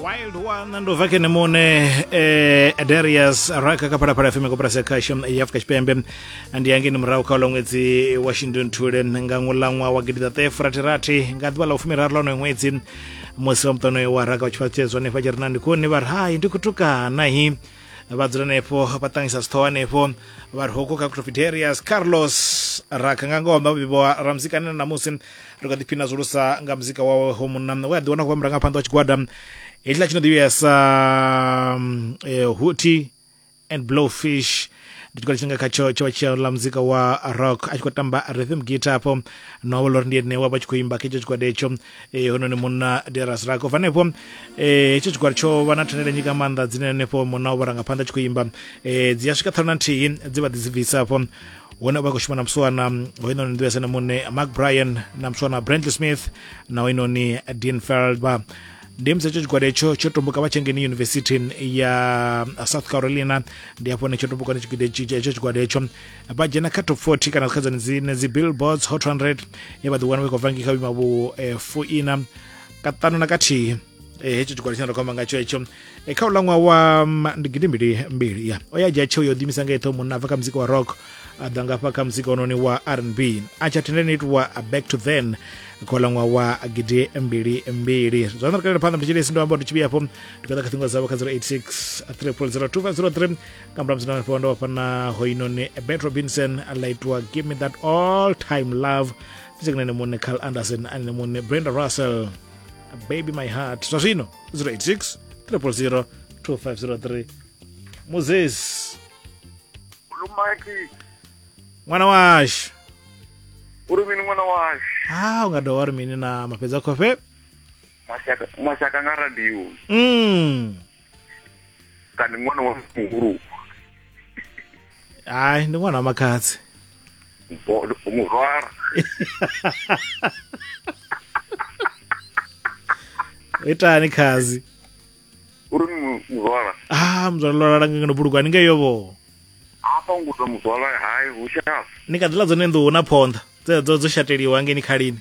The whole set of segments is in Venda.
wild one ndo vake nemone eh, darius raka kaphalaphala fm koporasi ya khasho ya afurika tshipembe ndi yangeni murahu kha ṅwedzi wa shindunthule nga ṅwulaṅwa wa gidi ṱaṱahe furathirathi nga ḓuvha ḽa vhufumiraru la onoyo ṅwedzi musi wa muṱano wa raka vha tshifhaṱutshedzwa hanefha tshi ri na ndikoni vha ri hai ndi kutukanahi vha dzula henefho vha ṱangisa sithoho hanefho vha ri hoko kha cropidarius carlos raka nga ngoho vhabebi wa ramzikana na musi ri kha ḓiphina zwulusa nga muzika wawe ho munna we a ḓiwana khou vha murangaphanḓa wa tshigwada hetshiḽa tshi no ḓivhea sa um, eh, huti and blowfish ndi tshikolo tshine nga khatsho tsho vha tshi ḽa muzika wa rock a tshi khou tamba rhythm guitar afho na wa lori ndi ene wa vha tshi khou imba kha hetsho tshigwada hetsho eh, hononi munna deras rako bva hanefho eh, hetsho tshigwada tsho vha na thandela nyika maanḓa dzine hanefho munna wa vharangaphanḓa a tshi khou imba eh, dzi a swika ṱhanu na nthihi dzi vha ḓi dzi bvisa afho wone vha khou shuma na muswana hoyinoni nḓivhese na muṋe mark bryan na muswana brantley smith na hoyinoni dean feldba ndi musi hetsho tshigwada etsho tsho tomboka vha tshengeni yunivesithi ya south carolina ndi hafho ne tsho tomboka ni tshigwada etsho tshigwada etsho vha dzhena kha top 40 kana kha dzone dzine dzi billboards hot 100 ye vha ḓiwana vha khou vha ngikha vhuima vhu eh, fuina kaṱanu na kathihi Eh, hetsho tshigwada tshine ra khou amba ngatsho hetsho eh, kha u ṅwaha wa mm, ndi gidi mbili mbili ya o ya dzhia tsheo yo ḓimisa nga eṱho munna a bva kha muzika wa rock a ḓa ngafha kha muzika ononi wa r n b a tsha thendeni itiwa back to then kha uḽa ṅwaha wa gidi mbili mbili zwa nda ri kalela phanḓa mutshilesi ndo amba uri tshi vhuya hafho ndi kha ḓa kha ṱhingo dzavho kha 086 3002503 nga murahu musi ndafho ndo vhafha na hoinoni bet robinson a ḽa itiwa give me that all time love fitsekana ne muṋe carl anderson a ne muṋe brenda russell baby my heart zwa zwino 086 000 2503 moses lumaki ṅwana washu uri mini ṅwana washu ha u nga dovha uri mini na mafhedza khofe mashaka mashaka nga radio mm. kana ṅwana wa muhulu hayi ndi ṅwana wa makhadzi murwara itani khazi uri muzwala ah muzwala lwala langa ngeno buluka ni ngeyo vho apa ngudza muzwala hayi hu shafu ni kha ḓila dzone nḓuhu na phonḓa dzedzo dzo shateliwa ngeni khalini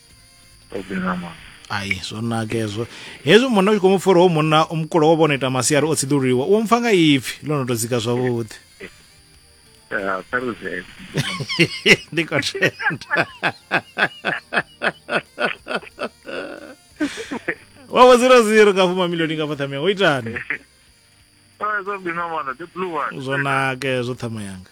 ai zwo naka hezwo hezwi munna u tshi khou mu pfha uri ho munna o mukulo wo vhona ita masiari o tsiḓululiwa u mpfa nga ipfi ḽo no tou dzika zwavhuḓi ndi khou tenda wa vho zero zero nga fuma milioni nga fothamia wo itani zwo naka hezwo thama yanga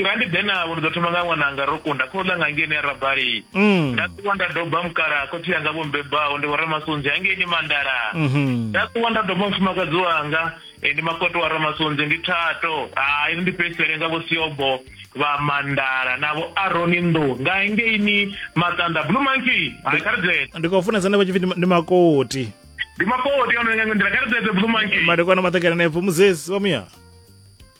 nga ndi ḓe navho ndi ḓo thoma nga ṅwananga ro kunda khou ḽa nga ngeni ya rabali mm. nda ṱuwa nda doba mukala khotsi yanga vho mbebaho ndi vhoramasunzi hangeni mandala mm-hmm. nda ṱuwa nda doba mufumakadzi wanga e, ndi makoto wa ramasunzi ndi thato hai ndi fhedzisele nga vho siobo vha mandala navho aroni ndo nga ngeini maṱanda blue monkey hai kha ri dzee ndi khou funesa nda vha tshipfi ndi makoti ndi makoti ono nga nḓila kha ri dzee blue monkey madekwana maṱakela nepfo muzesi wa muya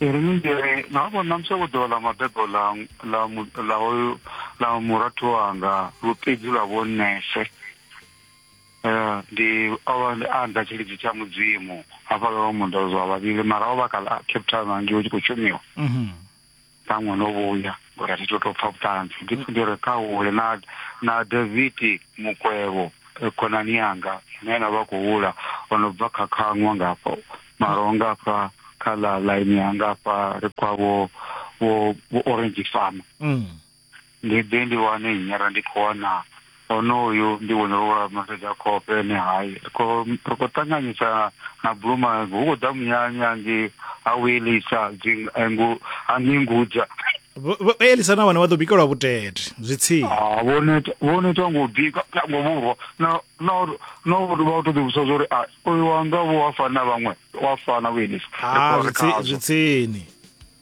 ri ni mbiri na vho na musi ḓuvha ḽa mabebo ḽa ḽa ḽa hoyu ḽa murathu wanga lupedzi lwa vho nese eh, ndi ovha ndi anda tshilidzi tsha mudzimu hafha lwa mundo zwa vhavhili mara ovha kha Cape Town ngei tshi khou shumiwa mhm. ṱhaṅwe no vhuya ngori a thi to tou pfa vhuṱanzi ndi pfhi ndi re khaule na na davidi mukwevho eh, khonani yanga ine na vha khou hula o no bva kha khaṅwa ngafho mara o ngafha kha ḽa ḽaini ya ngafha ri kwa vho vho vho orange farm Mm. ndi ḓe ndi wane nyara ndi khou wana onoyu ndi vhone wa maseda khofhe ene hai ri khou ṱanganyisa na buluma hu khou ḓa munyanya ngi ha wielisa hangei ngudza elisa na vhone vha ḓo bikelwa vhutete zwi tsini ah, vhone ita ngo bika ngo vhurwa na uri vha to ḓivhusa zwa uri ah, uyu wanga vho wa fana vhaṅwe wa fana vhuelisa ah, zwi tsini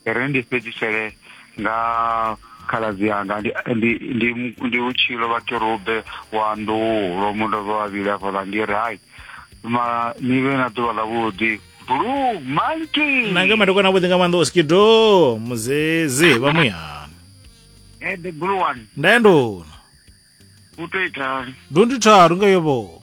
ri ndi fhedzisele nga khaladzi anga ndi ndi ndi ndi utshilo vha kerube wa ndulo mundo vha vhavhili afha vha ndi rai ma ni vhe na ḓuvha ḽavhuḓi blue monkey nanga madokwana avhuḓi nga maanḓa oskido muzezi vha muyani Eh, the blue one ndaendona u to itani do ndi tharu nga yobo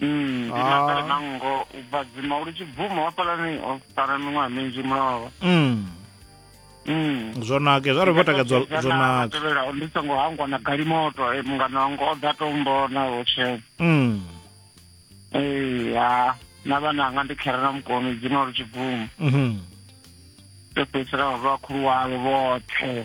Mm, ndi na kale na nngo u bva dzima uri tshi bvuma wa fhalani o sara miṅwaha minzhi mulova Mm. Mm. zwo nake zwa ri vho takadzwa zwo nake tevhelaho ndi songo hangwa na galimoto eh, mungana wanga o ḓa tombona hotshe Mm. ee ha na vhana anga ndi khera na mukoni dzima uri tshi bvuma Mhm. ndo fhedzisela vha vhakhulu wavho vhoṱhe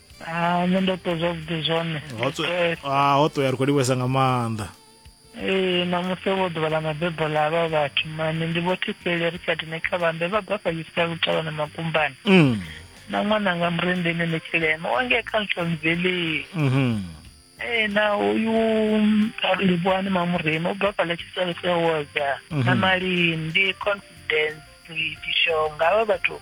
Ah, nṋe ndo ṱwa zwavhuḓi zwone ah, ho ṱoya ri khou livhesa nga maanḓa ee namusi vho ḓuvha ḽa mabebo ḽa vha vhathu mani ndi vho thifheli ri sa dine kha vhambe vha bva fhayisa lutalo na makumbani mm. na ṅwananga murendeni ni tshilema wange kha ntlhonzeleni mm-hmm. ee na uyu livhuwani mamurema u bva fhala tshisalo sa woza na mm-hmm. malindi confidence tishonga havha vhathu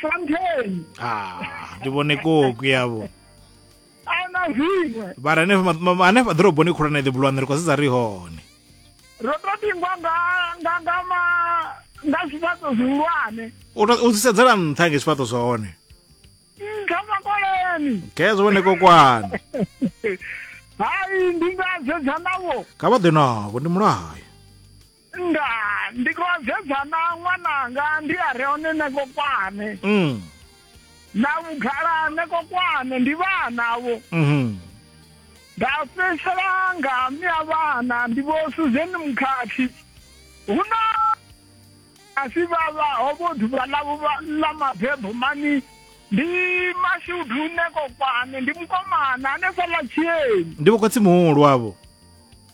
shantheni ah ndi vhone koku yavho ana zwiṅwe vhara hanefha ḓoroboni khulwane ḓi bulwane ri khou sedza ri hone ro to tingwa nga nga nga ma nga zwifhaṱo zwihulwane u sedzela nṱha nge zwifhaṱo zwa hone nṱha makoleni khezwo vhone kokwane hai ndi nga sedza navho kha vha ḓe navho ndi mulayo Ndaa, ndi khou sedza na ṅwananga ndi a re hone nekokwane. Mm. Na vhugala nekokwane ndi vhanavho. Mhm. Nda fhedzisela nga mme a vhana ndi vho Susan Mukhathi. Hu na a si vha vha ho vho ḓuvha ḽavho vha- ḽa mabebo mani ndi mashudu nekokwane ndi mukomana hanefhaḽa tshieni. Ndi vho khotsi muhulu avho.